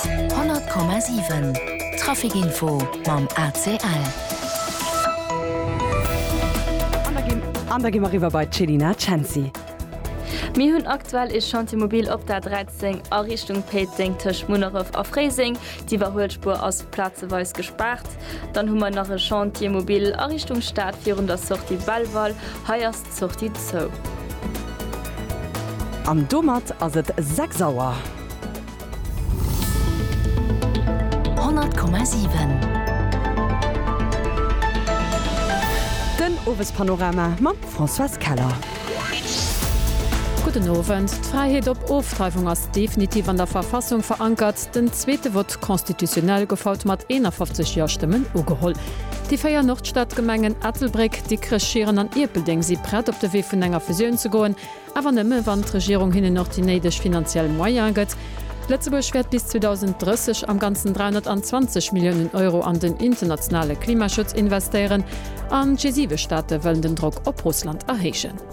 100,7 Traficinfo mam ACL. An da gi mer eriwwer bei d'Chelina Cenci. Mir hunn aktuell ee Chantier mobil op der 13 a Richtung Péiteng tëscht Munneref a Fréiseng. D'Iwwerhuelspuer ass plazeweis gespaart. Dann hu mer nach e Chantier mobil a Richtung Stad virun der Sortie Belval. Hei ass. Sortie zou. An domat ass et 6 Auer. 100,7. Den Owespanorama mam Françoise Keller. Gudden Owend. D'Fräiheet op Ofdreiwung ass definitiv an der Verfassung verankert. Den zweete Vote constitutionnel gouf haut mat 51 Ja-Stëmmen ugeholl. Déi véier Nordstadgemengen Ettelbréck, Dikrech, Schieren an Ierpeldeng si prett op de Wee vun enger Fusioun ze goen, awer nëmme wann d'Regierung hinnen och déi néideg finanziell Moyene gëtt. Lëtzebuerg wäert bis 2030 am Ganzen 320 Milliounen Euro an den internationale Klimaschutz investéieren an d'G7-Staate wëllen den Drock op Russland erhéijen.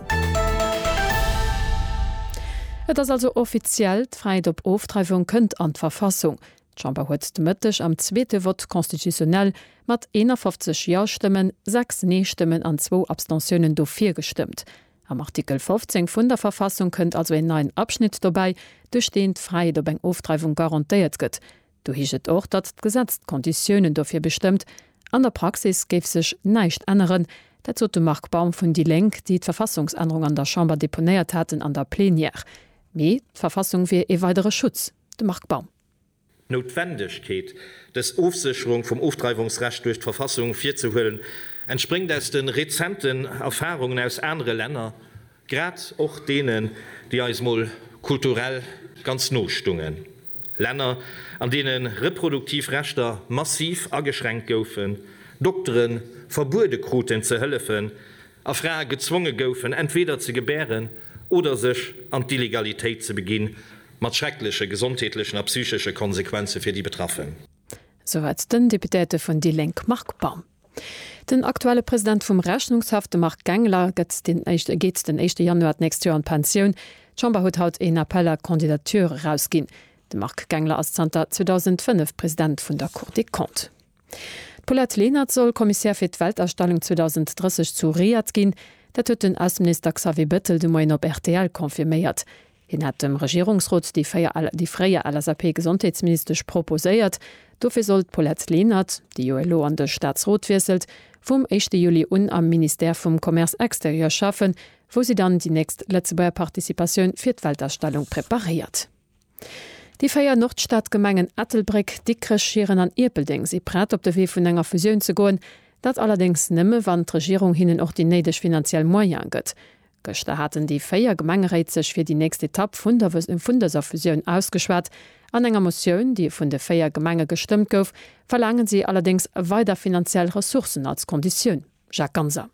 Et ass also offiziell, D'Fräiheet op Ofdreiwung kënnt an d'Verfassung. D'Chamber huet de Mëtteg am zweete Vote constitutionnel mat 51 Ja-Stëmmen, 6 Nee-Stëmmen an zwou Abstentiounen dofir gestëmmt. Am Artikel 15 vun der Verfassung kënnt also een neien Abschnitt dobäi, duerch deen d'Fräiheet op eng Ofdreiwung garantéiert gëtt. Do heescht et och, datt d'Gesetz d'Konditiounen dofir bestëmmt. An der Praxis géif sech näischt änneren. Dat sot de Marc Baum vun déi Lénk, déi d'Verfassungsännerung an der Chamber deponéiert haten an der Plenière. Mee d'Verfassung wier ee weidere Schutz. De Marc Baum. D'Noutwendegkeet, dës Ofsécherung vum Ofdreiwungsrecht duerch d'Verfassung virzehuelen, entspréngt aus de rezenten Erfarungen aus anere Länner, Grad och deenen, déi eis mol kulturell ganz no stungen. Länner, an deene reproduktiv Rechter massiv ageschränkt goufen, Doktere verbuede kruten ze hëllefen a Frae gezwonge goufen, entweder ze gebären oder sech an d'Illegalitéit ze beginn, mat schreckleche gesondheetlechen a psychesche Konsequenze fir déi Betraffen. Soweit den Deputéierte vun déi Lénk Marc Baum. Den aktuelle President vum Rechnungshaff, de Marc Gengler, gëtt den éischte geet den éischte Januar d'nächst Joer an d'Pensioun. D'Chamber huet haut een Appel à candidatures erausginn. De Marc Gengler ass zanter 2005 President vun der Cour des Comptes. D'Paulette Lenert soll Commissaire fir d'Weltausstellung 2030 zu Riyadh ginn. Dat huet den Ausseminister Xavier Bettel de Moien op rtl confirméiert. Hien hat dem Regierungsrot déi fréier LSAP-Gesondheetsministesch proposéiert. Dofir soll d'Paulette Lenert, déi jo elo an de Staatsrot wiesselt, vum éischte Juli un am Ministère vum Commerce extérieur schaffen, wou si dann déi nächst Lëtzebuerger Participatioun fir d'Weltausstellung preparéiert. Déi véier Nordstadgemengen Ettelbréck, Dikrech, Schieren an Ierpeldeng si prett, op de Wee vun enger Fusioun ze goen. Dat allerdéngs nëmme, wann d'Regierung hinnen och déi néideg finanziell Moyene gëtt. Gëschter haten déi 4 Gemengeréit sech fir déi nächst Etapp vun der vun dëser Fusioun ausgeschwat. An enger Motioun, déi vun de 4 Gemenge gestëmmt gouf, verlaangen si allerdéngs weider finanziell Ressourcen als Konditioun. Jacques Ganser.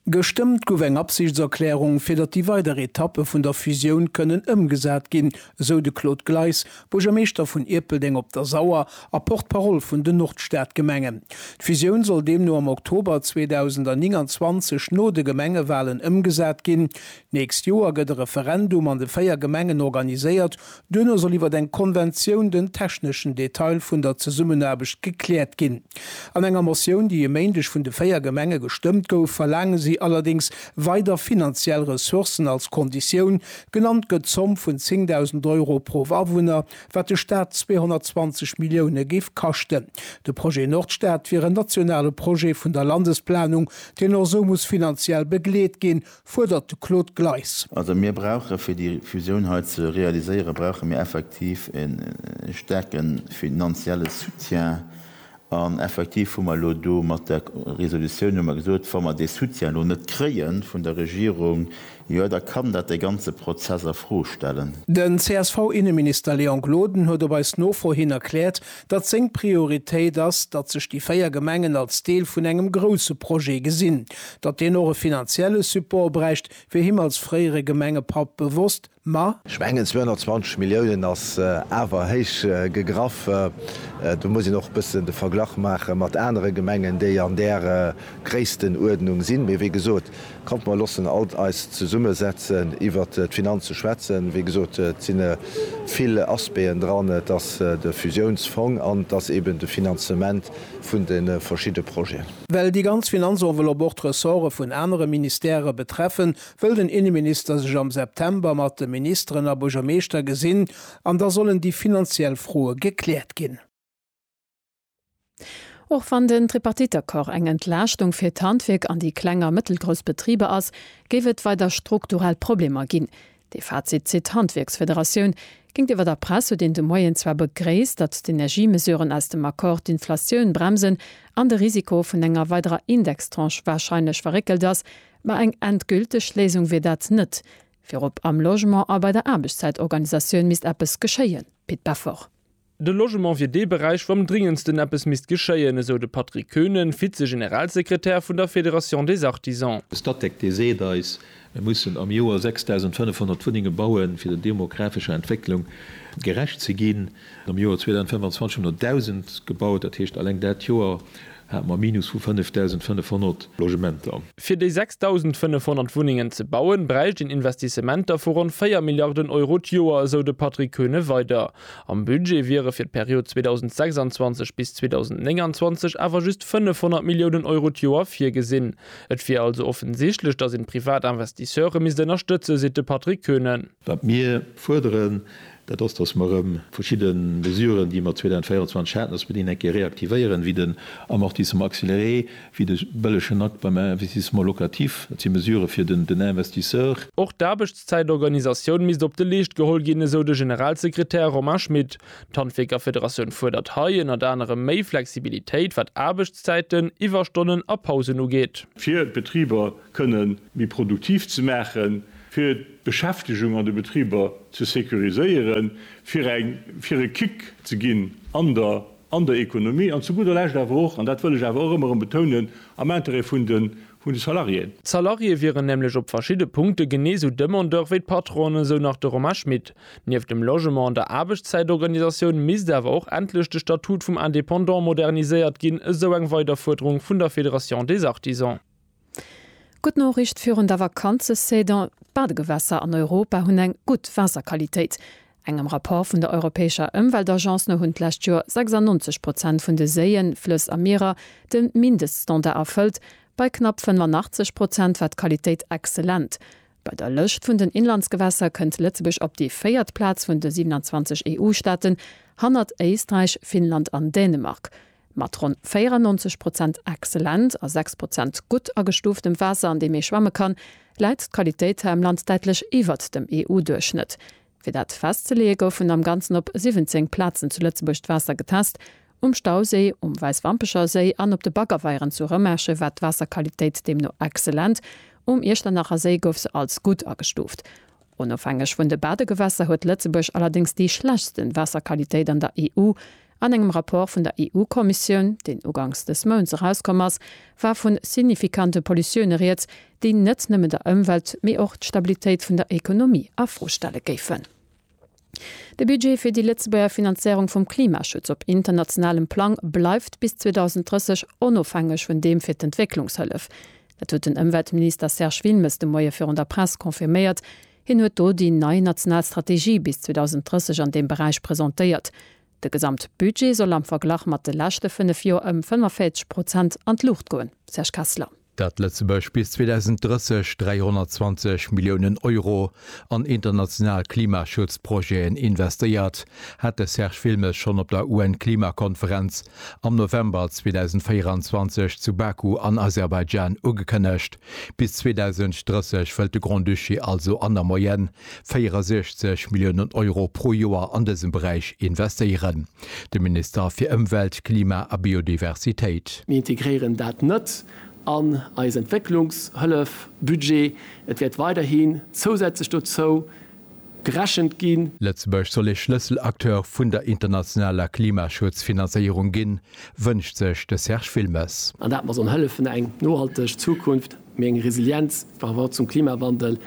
Gestëmmt gouf eng Absichtserklärung, fir datt déi weider Etappe vun der Fusioun kënnen ëmgesat ginn, esou de Claude Gleis, Buergermeeschter vun Ierpeldeng op der Sauer a Porte-parole vun den Nordstadgemengen. D'Fusioun soll deemno am Oktober 2029 no de Gemengewalen ëmgesat ginn. D'nächst Joer gëtt e Referendum an de véier Gemengen organiséiert. Duerno soll iwwer eng Konventioun den techneschen Detail vun der Zesummenaarbecht gekläert ginn. An enger Motioun, déi e Méindeg vun de véier Gemenge gestëmmt gouf, verlaange si allerdéngs weider finanziell Ressourcen als Konditioun, Genannt gëtt d'Zomm vun 10.000 Euro pro Awunner, wat de Staat 220 Millioune géif kaschten. De Projet Nordstad wier en nationale Projet vun der Landesplanung, deen och esou muss finanziell begleet ginn, fuerdert de Claude Gleis. Also mir brauche fir déi Fusioun hei ze realiséieren, brauche mir effektiv e staarke finanzielle Soutien. An effektiv hu mer elo do mat der Resolutioun hu mer gesot, wa mer dee Soutien elo net kréie vun der Regierung, jo da kann dat dee ganze Prozess a Fro stellen. Den CSV-Inneminister Léon Gloden huet op eis Nofro hin erkläert, datt seng Prioritéit ass, datt sech déi véier Gemengen als Deel vun engem grousse Projet gesinn. Datt deen och e finanzielle Support bräicht, wier him als fréiere Gemengepapp bewosst. Ma. Ech mengen 220 Milliounen ass awer héich gegraff. Do muss een och e bëssen de Verglach maache mat anere Gemengen, déi an där Gréisstenuerdnung sinn. Mee wéi gesot, kommt mer loossen alt eis zesumme setzen iwwert d'Finanze schwätzen. Wéi gesot, et si vill Aspecten dran, et ass de Fusiounsfong an et ass eeben de Finanzement vun de verschidde Projeten. Well déi ganz Finanzenveloppe och d'Ressorte vun anere Ministèrë betreffen, wëll den Inneminister sech am September mat de Ministeren a Buergermeeschter gesinn an da sollen déi finanziell Froe gekläert ginn. Och wann den Tripartite-Accord eng Entlaaschtung fir d'Handwierk an déi kleng a mëttelgrouss Betriber ass, géif et weider strukturell Problemer ginn. Dee Fazit zitt d'Handwierksfederatioun. Géintiwwer der Press huet een de Moien zwar begréisst, datt d'Energiemesuren aus dem Accord d'Inflatioun bremsen an de Risiko vun enger weiderer Indextranche warscheinlech verréckelt ass, Mä eng endgülteg Léisung wier dat net. Virop am Logement a bei der Aarbechtszäitorganisatioun misst eppes geschéien. Pit Beffort. De Logement wier dee Beräich, wou am dringendsten eppes misst geschéien, esou de Patrick Koenen, Vize-Generalsekretär vun der Fédération des Artisans. De Statec, dee seet eis, mir mussen am Joer 6.500 Wunnenge bauen, fir der demografescher Entwécklung gerecht ze ginn. Am Joer 2025 hunn der 1.000 gebaut, dat heescht, alleng dat Joer hate mer e Minus vu 5.500 Logementer. Fir déi 6.500 Wunnengen ze bauen, bräicht een Investissementer vu ronn 4 Milliarden Euro d'Joer, esou de Patrick Koeune weider. Am Budget wiere fir d'Period 2026 bis 2029 awer just 500 Milliounen Euro d'Joer virgesinn. Et wier also offensichtlech, datt een d'privat Investisseure misst ënnerstëtzen, seet de Patrick Koeune. Wat mir fuerderen, dat ass, dass mer erëm verschidde Mesuren, déi mer 2024 haten, dass mer déi eng Kéier reaktivéieren, wéi den Amortissement accéléré, wéi de bëllegen Akt beim Investissement locatif. Dat si Mesurë fir den Investisseur. Och d'Aarbechtszäitorganisatioun misst op de Leescht geholl ginn, esou de Generalsekretär Romain Schmit. D'Handwierkerfederatioun fuerdert hei ënnert anerem méi Flexibilitéit, wat Aarbechtszäiten, Iwwerstonnen a Pausen ugeet. Fir d'Betriber kënne méi produktiv ze maachen, fir d'Beschäftegung an de Betriber ze sécuriséieren, fir eng, fir e Kick ze ginn an der, an der Économie an zu gudder Lescht awer och, an dat wëll ech awer och ëmmer erëm betounen, am Intérêt vun de, vun de Salariéen. D'Salariée wieren nämlech op verschidde Punkte genee sou Demandeur wéi d'Patronen, esou nach de Romain Schmit. Nieft dem Logement an der Aarbechtszäitorganisatioun misst awer och endlech de Statut vum Indépendant moderniséiert ginn, esou eng weider Fuerderung vun der Fédération des Artisans. Gutt Noriicht virun der Vakanzesaison, D'Badegewässer an Europa hunn eng gutt Waasserqualitéit. Engem Rapport vun der europäescher Ëmweltagence no hunn d'lescht Joer 96 Prozent vun de Séien, Flëss a Mierer de Mindeststandard erfëllt. Bei knapp 85 Prozent war d'Qualitéit exzellent. Bei der Lëscht vun den Inlandsgewässer kënnt Lëtzebuerg op déi véiert Plaz vun de 27 EU-Staaten, hannert Éisträich, Finnland an Dänemark. Mat ronn 94 Prozent excellent a 6 Prozent gutt agestuuftem Waasser, an deem ee schwamme kann, läit d'Qualitéit hei am Land däitlech iwwert dem EU-Duerchschnëtt. Fir dat festzeleeë goufen am Ganzen op 17 Plazen zu Lëtzebuerg d'Waasser getest, um Stauséi, um Wäisswampecher Séi an op de Baggerweieren zu Rëmerschen war d'Waasserqualitéit deemno excellent, um Iechternacher Séi gouf se als gutt agestuuft. Onofhängeg vun de Badegewässer huet Lëtzebuerg allerdéngs déi schlechtsten Waasserqualitéit an der EU. An engem Rapport vun der EU-Kommissioun, deen ugangs dës Mounts erauskomm ass, war vun signifikante Pollutioune rieds, déi net nëmmen der Ëmwelt, mee och d'Stabilitéit vun der Ekonomie a Fro stelle géifen. De Budget fir déi Lëtzebuerger Finanzéierung vum Klimaschutz op internationalem Plang bleift bis 2030 onofhängeg vun deem fir d'Entwécklungshëllef. Dat huet den Ëmweltminister Serge Wilmes de Moie virun der Press confirméiert. Hien huet do déi nei national Strategie bis 2030 an deem Beräich presentéiert. De Gesamtbudget soll am Verglach mat de leschte fënnef Joer ëm 45 Prozent an d'Luucht goen. Serge Kessler. dat Lëtzebuerg bis 2030 320 Milliounen Euro an international Klimaschutzprojeten investéiert, hat de Serge Wilmes schonn op der UN-Klimakonferenz am November 2024 zu Baku an Aserbaidschan ugekënnegt. Bis 2030 wëllt de Grand-Duché also an der Moyenne 64 Milliounen Euro pro Joer an dësem Beräich investéieren, de Minister fir Ëmwelt, Klima a Biodiversitéit. Mir integréieren dat net an eis Entwécklungshëllef-Budget. Et wäert weiderhi zousätzlech dozou gerechent ginn. Lëtzebuerg soll ee Schlësselacteur vun der internationaler Klimaschutz-Finanzéierung ginn, wënscht sech de Serge Wilmes. An dat mer sollen hëllefen, eng nohalteg Zukunft méi eng Resilienz par rapport zum Klimawandel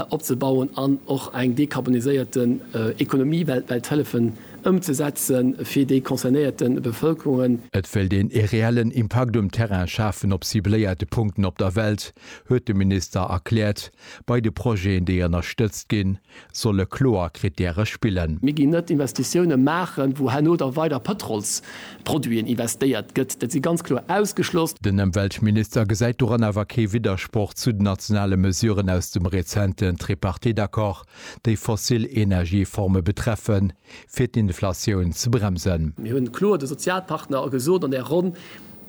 opzebauen an och eng dekarboniséierten Ekonomie weltwäit hëllefen ëmzesetzen fir déi concernéierte Bevëlkerungen. Et wéilt een ee reellen Impakt um Terrain schafen op cibléierte Punkten op der Welt, huet de Minister erkläert, bei de Projeten, déi ënnerstëtzt ginn. solle kloer Krittäre spillen. Mir ginn net Investitiounen maachen, wou herno da weider Pëtrolsproduiten investéiert gëtt. Dat si ganz kloer ausgeschloss. Den Ëmweltminister gesäit doran awer kee Widdersproch zu den nationale Mesuren aus dem rezenten Tripartite-Accord, déi fossil Energieforme betreffen, fir d'Inflatioun ze bremsen. Mir hunn kloer de Sozialpartner gesot an där Ronn,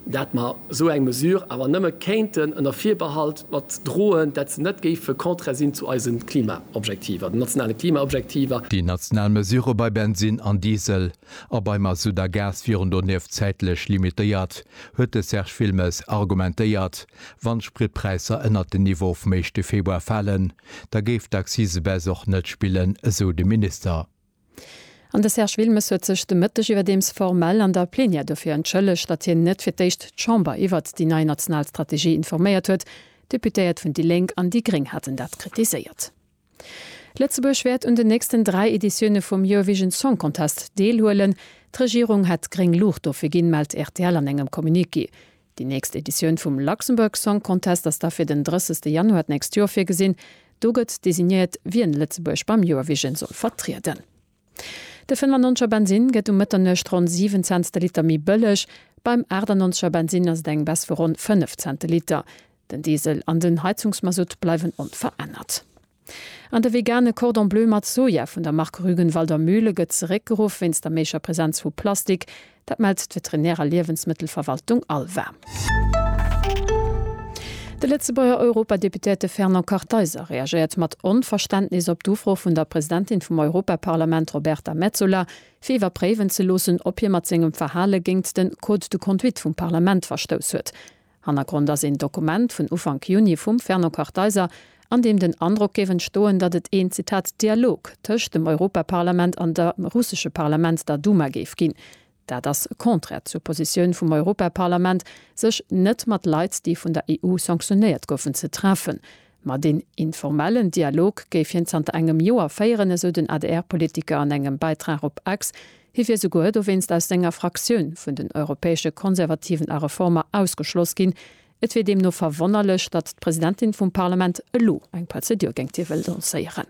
dat mer esou eng Mesure awer nëmme kéinten ënner Virbehalt mat droen, dat se net géife contraire sinn zu eise Klimaobjektiver, den nationale Klimaobjektiver. Déi national Mesure bei Bensinn an Diesel a bei Mazout a Gas wieren donieft zäitlech limitéiert, huet de Serge Wilmes argumentéiert. Wann d'Spritpräisser ënnert den Niveau vum éischte Februar falen, da géif d'Accise-Baisse och net spillen, esou de Minister. An de Serge Wilmes huet sech de Mëtteg iwwerdeems formell an der Plenière dofir entschëllegt, datt hien net fir d'éischt d'Chamber iwwert déi nei national Strategie informéiert huet. D'Deputéiert vun déi Lénk an déi Gréng haten dat kritiséiert. Lëtzebuerg wäert un den nächsten dräi Editioune vum Eurovision Song Contest deelhuelen. D'Regierung hätt gréng Luucht dofir ginn, mellt rtl an engem Communiqué. Déi nächst Editioun vum Luxembourg Song Contest ass da fir den 30 Januar d'nächst Joer virgesinn. Do gëtt designéiert, wien Lëtzebuerg beim Eurovision soll vertrieden. De 95 er Bensinn gëtt um Mëtternuecht ronn 7 Cents de Liter méi bëlleg. Beim 88 er Bensinn ass et eng Baisse vu ronn 5 Cent de Liter. Den Diesel an den Heizungsmasutt bleiwen onverännert. An de vegane Cordon Bleu mat Soja vun der Mark Rügenwalder Mühle gëtt zeréckgeruff wéinst der méiger Presenz vu Plastik. Dat mellt d'Veterinär a Liewensmëttelverwaltung Alva. De Lëtzebuerger Europadeputéierte Fernand Kartheiser reagéiert mat Onverständnis op d'Ufro vun der Presidentin vum Europaparlament Roberta Metsola, fir iwwerpréiwen ze loossen, ob hie mat sengem Verhale géingt de Code de conduite vum Parlament verstouss huet. Hannergrond ass een Dokument vun Ufank Juni vum Fernand Kartheiser, an deem den Androck géif entstoen, datt et een, Zitat, Dialog tëscht dem Europaparlament an der russesche Parlament, der Duma, géif ginn. Dat ass contraire zur Positioun vum Europaparlament, sech net mat Leit, déi vun der EU sanctionéiert goufen, ze treffen. Ma deen informellen Dialog géif hien zanter engem Joer féieren, esou den ADR-Politiker an engem Bäitrag op X. Hie wier souguer dowéinst aus senger Fraktioun vun den europäesche Konservativen a Reformer ausgeschloss ginn. Et wier deemno verwonnerlech, datt d'Presidentin vum Parlament elo eng Prozedur géingt hie wëll lancéieren.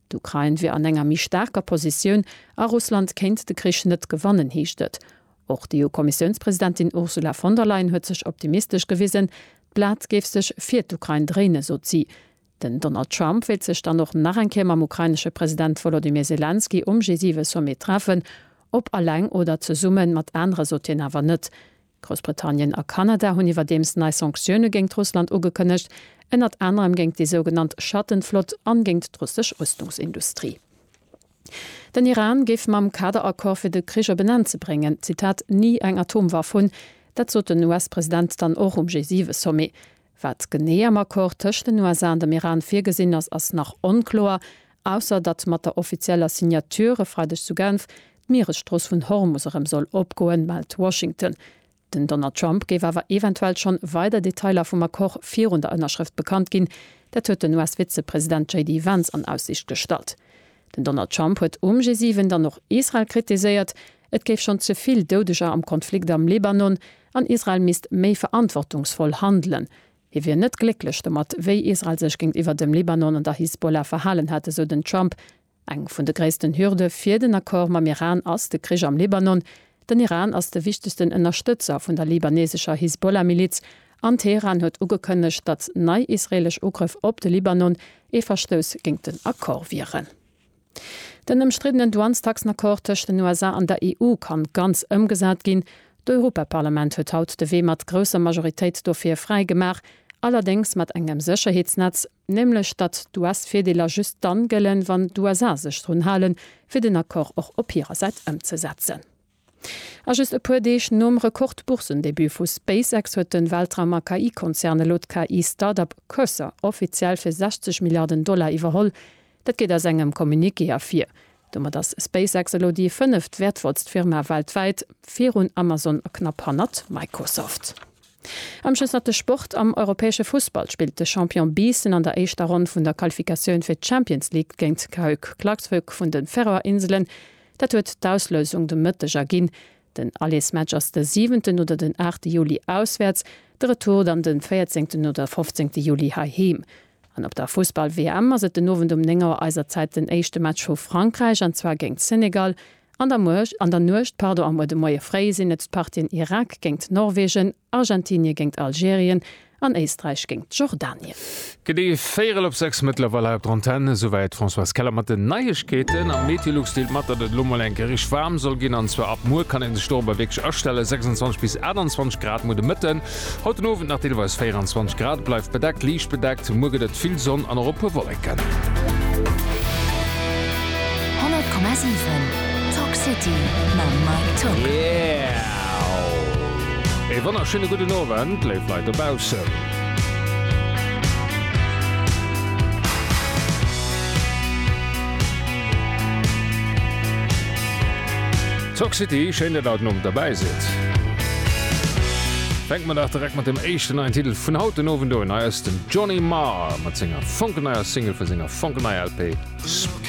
D'Ukrain wier an enger méi staarker Positioun a Russland kéint de Krich net gewannen, heescht et. Och d'EU-Kommissiounspresidentin Ursula von der Leyen huet sech optimistesch gewisen. D'Blat géif sech fir d'Ukrain dréinen, sot si. Den Donald Trump wéilt sech dann och nach eng Kéier mam ukrainesche President Wolodymyr Selenskyj um G7-Sommet treffen. Ob eleng oder zesumme mat anere sot hien awer net. Groussbritannien a Kanada hunn iwwerdeems nei Sanktioune géingt Russland ugekënnegt, ënnert anerem géingt déi sougenannt Schattenflott an géingt d'russesch Rüstungsindustrie. Den Iran géif mam Kaderaccord fir de Krich op en Enn ze bréngen, Zitat, ni eng Atomwaff hunn. Dat sot den US-President dann och um G7-Sommet. Wat genee am Accord tëscht den USA an dem Iran virgesinn ass, ass nach onkloer, ausser datt mat der offizieller Signature e Freideg zu Genf d'Mieresstrooss vun Hormus erëm soll opgoen, mellt Washington. Den Donald Trump géif awer eventuell schonn weider Detailer vum Accord virun der Ënnerschrëft bekannt ginn. Dat huet den US-Vizepresident JD Vance an Aussiicht gestallt. Den Donald Trump huet um G7 dann och Israel kritiséiert, Et géif schonn ze vill Doudeger am Konflikt am Libanon an Israel misst méi verantwortungsvoll handelen. Hie wier net glécklech domat, wéi Israel sech géintiwwer dem Libanon an der Hisbollah verhalen hätt, esou den Trump. Eng vun de gréissten Hürde fir den Accord mam Iran ass de Krich am Libanon. Den Iran ass de wichtegsten Ënnerstëtzer vun der libanesescher Hisbollah-Miliz an Teheran huet ugekënnegt, datt nei israeelesch Ugrëff op de Libanon ee Verstouss géint den Accord wieren. Den ëmstriddenen Douanestaxen-Accord tëscht den USA an der EU kann ganz ëmgesat ginn. D'Europaparlament huet haut de Wee mat grousser Majoritéit dofir fräi gemaach, allerdéngs mat engem Sécherheetsnetz, nämlech datt d'US-Virdeeler just dann gëllen, wann d'USA sech drun halen, fir den Accord och op hirer Säit ëmzesetzen. A just e puer Deeg nom Rekord-Boursendebut vu SpaceX huet de Weltraum a KI-Konzern elo d'KI-Startup Cursor offiziell fir 60 Milliarden Dollar iwwerholl. Dat geet aus engem Communiqué ervir. Domat ass SpaceX elo déi fënneft wäertvollst Firma weltwäit, virun Amazon a knapp hannert Microsoft. Am Schëssnatte Sport, Am europäesche Fussball spillt de Champion Biissen an der éischter Ronn vun der Qualifikatioun fir d'Champions League géint d'Hapoel Klaksvik vun de Färöer Inselen. Dat huet d'Auslösung de Mëtteg erginn. Den Allesmatch ass de siwenten oder den aachte Juli auswäerts, de Retour dann de véierzéngten oder fofzéngte Juli heiheem. An op der Fussball-WM ass et den Owend um 9 Auer eiser Zäit den éischte Match vu Frankräich, an zwar géint Senegal, an der Nuecht am Moie fréi sinn et d'Partien Irak géint Norwegen, Argentinie géngt Algerien an Éisträich géngt Jordanien. Gëtt ee Véierel op 6 mëttlerweil hei op der Antenn. Esouwäit d'Françoise Keller mat den Neiegkeeten. Am Meteolux deelt mat, datt et elo mol eng Kéier richteg waarm soll ginn, an zwar ab muer kann ee sech dorobber wierklech astellen. 26 bis 28 Grad muer de Mëtten, haut den Owend nach deelweis 24 Grad. Et bleift bedeckt, liicht bedeckt. Muer gëtt et vill Sonn an och e puer Wolleken. Ee wonnerschéine gudden Owend, léif Leit dobaussen. D'Sock City, schéin dat haut den Owend derbäi sidd. Fänke mer dach direkt mat dem éischten neien Titel vun haut den Owend un. Hei ass den Johnny Marr mat senger fonkelneier Single vu senger fonkelneier LP Sp.